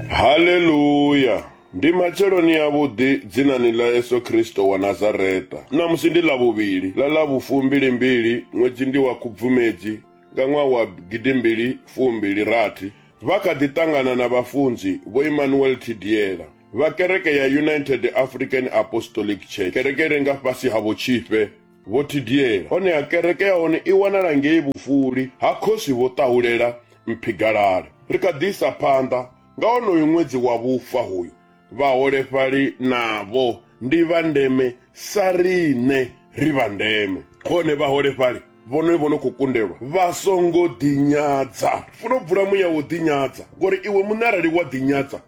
Haleluya! Ndi matsheloni a vhuḓi dzinani ḽa Yesu Kristo wa Nazareta. Ṋamusi ndi ḽa vhuvhili ḽa ḽa vhufumbili mbili ṅwedzi ndi wa Khubvumedzi nga ṅwaha wa gidimbili fumbili rathi. Vha kha ḓi ṱangana na vhafunzi Vho Emmanuel Thidiela vha kereke ya United African Apostolic Church, kereke i re nga fhasi ha Vho Tshifhe, Vho Thidiela, honeha kereke ya hone i wanala ngei vhufuli ha Khosi Vho Ṱahulela Mphigalala. Ri kha ḓi isa phanḓa nga honoyu ṅwedzi wa vhufa hoyu. Vhaholefhali navho ndi vha ndeme sa riṋe ri vha ndeme. Hone vhaholefhali vhone vho no khou kundelwa vha songo ḓinyadza. Funa u bvula muya wa u ḓinyadza, ngori iwe muṋe arali wa ḓinyadza,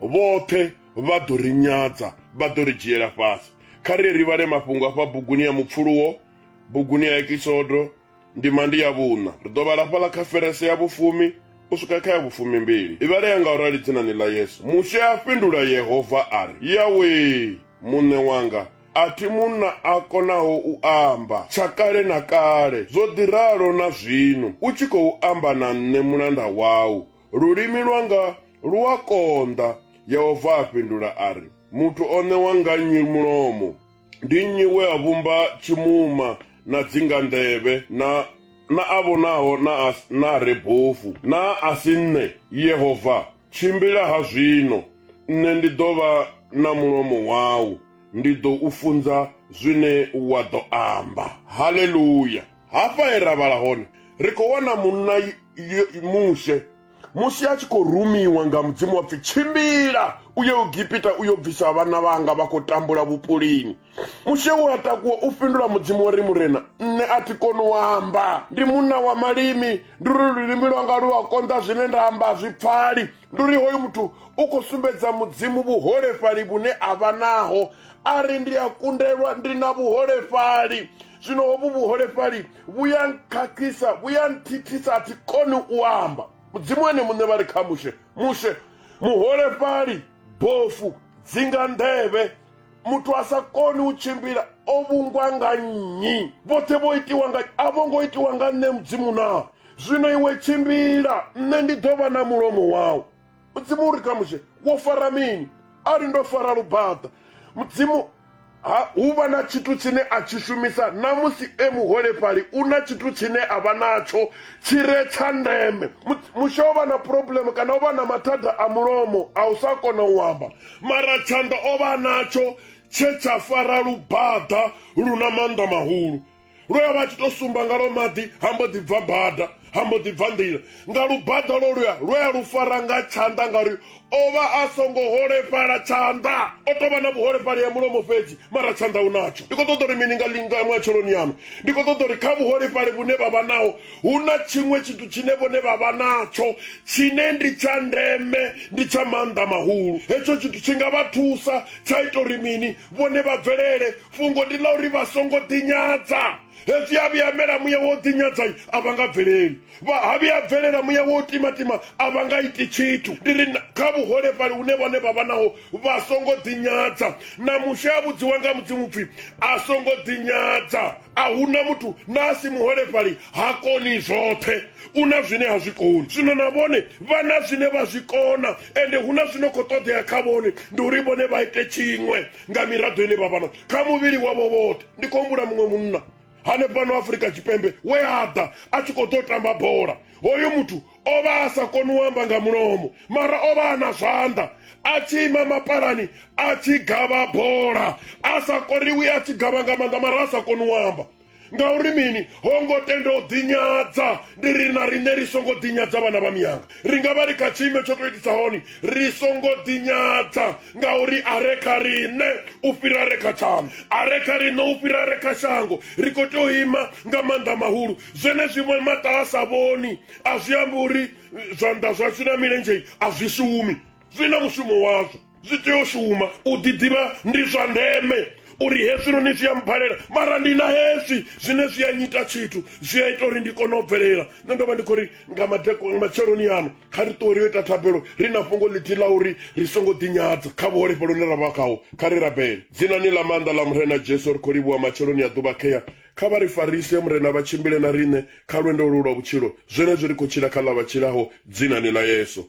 vhoṱhe vha ḓo ri nyadza vha ḓo ri dzhiela fhasi kha ri ri vhale mafhungo afha buguni ya mupfuluwo buguni ya ekisodo ndima ndi ya vhuṋa ri ḓo vhala fhaḽa kha ferese ya vhufumi u swika kha ya vhufumi mbili i vhalea nga u rali dzinani ḽa yesu mushe a fhindula yehova a ri yawe muṋe wanga a thi munna a konaho u amba tsha kale na kale zwo ḓi ralo na zwino u tshi khou amba na nṋe mulanda wau Lulimi lwanga lu a konḓa. Yehova a fhindula a ri, Muthu o ṋewa nga nnyi mulomo? Ndi nnyi we a vhumba tshimuma na dzinganḓevhe na na a vhonaho na a, na a re bofu? Naa a si nṋe, Yehova? Tshimbila ha zwino, nṋe ndi ḓo vha na mulomo wau, ndi ḓo u funza zwine wa ḓo amba. Haleluya! Hafha he ra vhala hone, ri khou wana munna Mushe musi a tshi khou rumiwa nga mudzimu wa pfi tshimbila u ye ugipita u yo bvisa vhana vhanga vha khou tambula vhupulini mushe u a takuwa u fhindula mudzimu wa ri murena nṋe a thi koni u amba ndi munna wa malimi ndi uri lulimi lwanga lu a konḓa zwine nda amba zwi pfali ndi uri hoyu muthu u khou sumbedza mudzimu vhuholefhali vhune a vha naho a ri ndi a kundelwa ndi na vhuholefhali zwino hovhu vhuholefhali vhu ya nkhakhisa vhu ya nthithisa a thi koni u amba mudzimu ene muṋe vha ri kha mushe mushe muholefhali bofu dzinga nḓevhe muthu a sa koni u tshimbila o vhungwa nga nnyi vhoṱhe vho itiwa nga a vho ngo itiwa nga nṋe mudzimu naa zwino iwe tshimbila nṋe ndi ḓo vha na mulomo wau mudzimu uri khamuxe wo fara mini a ri ndo fara lubaḓa mudzimu ha hu vha na tshithu tshine a tshi shumisa na musi e muholefhali u na tshithu tshine a vha natsho tshi re tsha ndeme mushe o vha na problem kana o vha na mathada a mulomo a u sa kona u amba mara tshanḓa o vha natsho tshe tsha fara lubaḓa lu na maanḓa mahulu lwe a vha a tshi tou sumba nga lwo maḓi ha mbo ḓi bva bada ha mbo ḓi bva nḓila nga lubada lwo luya lwe a lu fara nga tshanḓa ngauri o vha a songo holefhala tshanḓa o tou vha na vhuholefhali ya mulomo fhedzi mara tshanḓa u natsho ndi khou ṱoḓa uri mini nga linga matsheloni yanu ndi khou ṱoḓa uri kha vhuholefhali vhune vha vha naho hu na tshiṅwe tshithu tshine vhone vha vha natsho tshine ndi tsha ndeme ndi tsha maanḓa mahulu hetsho tshithu tshi nga vha thusa tsha ita uri mini vhone vha bvelele fhungo ndi ḽa uri vha songo ḓinyadza hezwi a vhuya mela muya wo ḓinyadza a vha nga bveleli vha ha vhuya bvelela muya wo timatima a vha nga iti tshithu ndi ri kha vhuholefhali hune vhone vha vha naho vha songo ḓinyadza na mushe a vhudziwa nga mudzimu pfhi a songo ḓinyadza a huna muthu na a si muholefhali ha koni zwoṱhe u na zwine ha zwi koni zwino na vhone vha na zwine vha zwi kona ende hu na zwino khou ṱoḓea kha vhone ndi uri vhone vha ite tshiṅwe nga miraḓo ine vha vha na kha muvhili wavho vhoṱhe ndi khou humbula muṅwe munna hanefhano afurika tshipembe we a ḓa a tshi khou ḓo tamba bola hoyo muthu o vha a sa koni u amba nga mulomo mara o vha a na zwanḓa a tshi ima mapalani a tshi gavha bola a sa koriwi a tshi gavha nga maanḓa mara a sa koni u amba ngauri mini ho ngo tenda u ḓinyadza ndi ri na riṋe ri songo ḓinyadza vhana vha miyanga ri nga vha ri kha tshiimo tsho tou itisa hone ri songo ḓinyadza ngauri a re kha riṋe u fhira re kha tshango a re kha riṋe u fhira re kha shango ri khou tea u ima nga maanḓa mahulu zwenezwiṅwe maṱa a sa vhoni a zwi ambi uri zwanḓa zwashu na milenzhei a zwi shumi zwi na mushumo wazwo zwi tea u shuma u ḓiḓivha ndi zwa ndeme uri hezwinoni zwi a mphalela mara ndi na hezwi zwine zwi a nyita tshithu zwi a ita uri ndi kone u bvelela nṋe ndo vha ndi khou ri nga matsheloni ano kha ri ṱuwe ri yo ita thabelo ri na fhungo ḽithihi ḽa uri ri songo ḓinyadza kha vhuholefhelo hune ra vha khaho kha ri rabele dzinani ḽa maanḓa ḽa murena jesu ri khou livhuwa matsheloni a ḓuvha khea kha vha ri farise murena vha tshimbile na riṋe kha lwendo lu lwa vhutshilo zwenezwi ri khou tshila kha ḽa vha tshilaho dzinani ḽa yesu